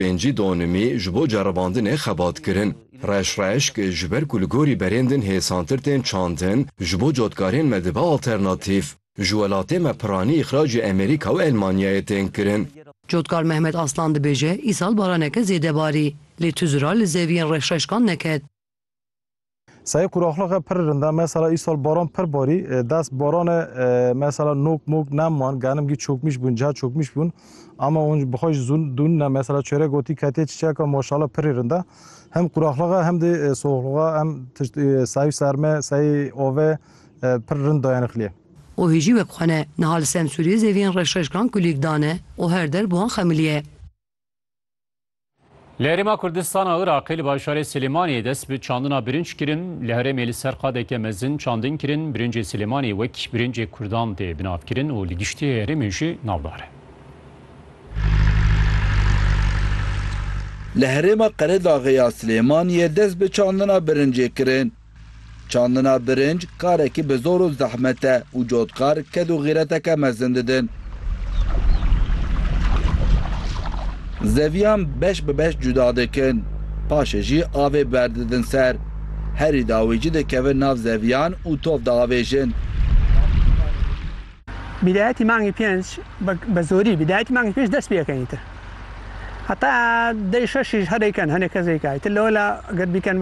Pêncî donimî ji bo ceribandinê xebat kirin. Reş reşk, ji ber ku li gorî berên din hêsantir tên çandin, ji bo cotkarên me dibe alternatîf. Ji welatê me piranî îxracê Emerîka û Elmanyayê tên kirin. Cotkar Mehmet Aslan dibêje, Îsal baraneke zêde barî, lê tu zira li zeviyên reşreşkan neket. Sayê quraxliqe pir rind e. Mesela îsal baran pir barî. Dest barane mesela nok mok nem wan. Genim gî çokmîş bûn, ca çokmîş bûn. Ama hûn bi xwe ji zûn dûn ne. Mesela çerek gotî ketê çiçeka maşala pirî rind e. Hem quraxliqe hem de soxliqe em tişt sayê serme, sayê ave pir rind dayanixliyê. Û hê jî wek xwe ne. Niha li Semsûriyê zeviyên reşreşkan kulîk dane û her der bi wan xemilîye. Li Herêma Kurdistana Iraqê li bajarê Silêmaniyê dest bi çandina birinc kirin. Li herêmê li ser qadeke mezin çandin kirin. Birincê Silêmaniyê wek birincê Kurdan tê binavkirin û li giştî herêmê jî navdar e. Li herêma Qeredaxê ya Silêmaniyê dest bi çandina birincê kirin. Çandina birinc karekî bi zor û zehmet e û cotkar ked û xîreteke mezin didin. Zeviyan beş bi beş cuda dikin. Paşê jî avê berdidin ser. Herî dawî jî dikevin nav zeviyan û tov diavêjin. Bidayetî mangê pênc bi zorî bidayetî mangê pênc dest pê yeke îtir. Heta dê şeş jî herêken hinek kes rêkayî. Ti lewla ged bîken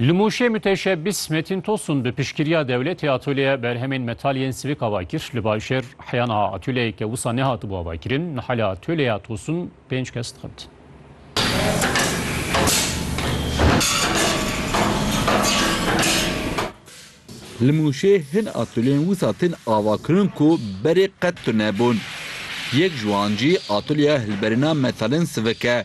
Li Mûşê miteşebis Metîn Tosun bi piştgiriya dewletê atolyeya berhemên metal yên sivik ava kir. Li Bajêr heya niha atolyeyeke wisa nehatibû avakirin. Niha li atolyeya Tosun pênc kes dixebitin. Li Mûşê hin atolyeyên wisa tên avakirin ku berê qet tunebûn. Yek ji wan jî atolyeya hilberîna metalên sivik e.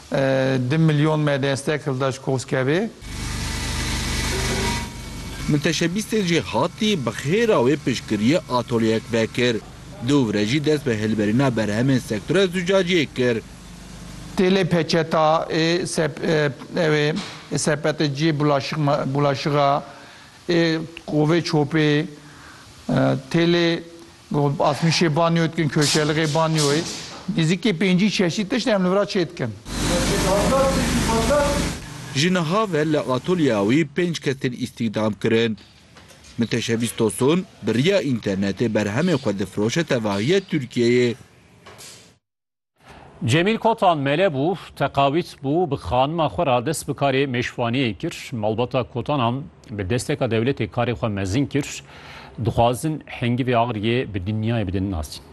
Du milyon me destek hilda ji Koskevê. Milteşebîstê jê hatî bi xêra wê piştgiriyê atolyeyek vekir. Du vire jî dest bi hilberîna berhemên sektora zûcaciyê kir. Têlê peçeta ê ew ê sepetê cihê bulaşixa ê kovê çopê têlê. Asmîşê banyo dikin, köşeliqê banyoyê. Nêzîkî pêncî çeşît tişt em li vir a çê dikin. Ji niha ve li atolyeya wî pênc kes tên îstîhdam kirin. Miteşebîs Tosun bi riya înternetê berhemên xwe difiroşe tevahiya Tirkiyeyê. Cemîl Kotan mele bû, teqawît bû, bi xanima xwe re dest bi karê mêşvaniyê kir. Malbata Kotanan bi desteka dewletê karê xwe mezin kir. Dixwazin hingivê Agriyê bi dinyayê bidin nasîn.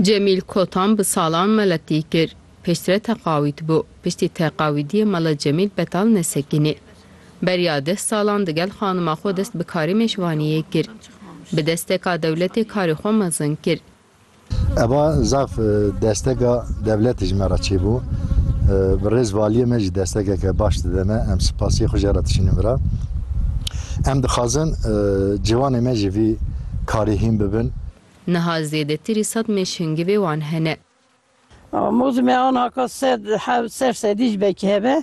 Cemîl Kotan bi salan meletî kir. Piştre teqawîd bû. Piştî teqawîdiyê mala Cemîl betal nesekinî. Beriya deh salan digel xanima xwe dest bi karê mêşvaniyê kir. Bi desteka dewletê karê xwe mezin kir. Eva zaf desteka dewletê ji me re çêbû. Bi rêz valiyê me jî destekeke baş dide me. Em spasiyê xwe jê re dişînin vira. Em dixwazin ciwanê me ji vî karê hîn bibin. Niha zêdetirî sed mêşhingivê wan hene. Mozî me an haka sed hev ser sedî ji bekî hebe.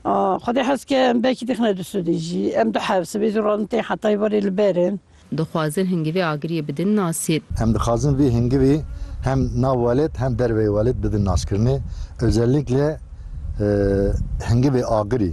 Xwedê hez ke em bekî dixne du sudî jî. Em du hev sibê zû radin tên hetayî verê li ber in. Dixwazin hingivê agiriyê bidin nasî. Em dixwazin vê hingivê hem nav welêt hem derveyê welêt bidin naskirinê. Özellikle hingivê agirî.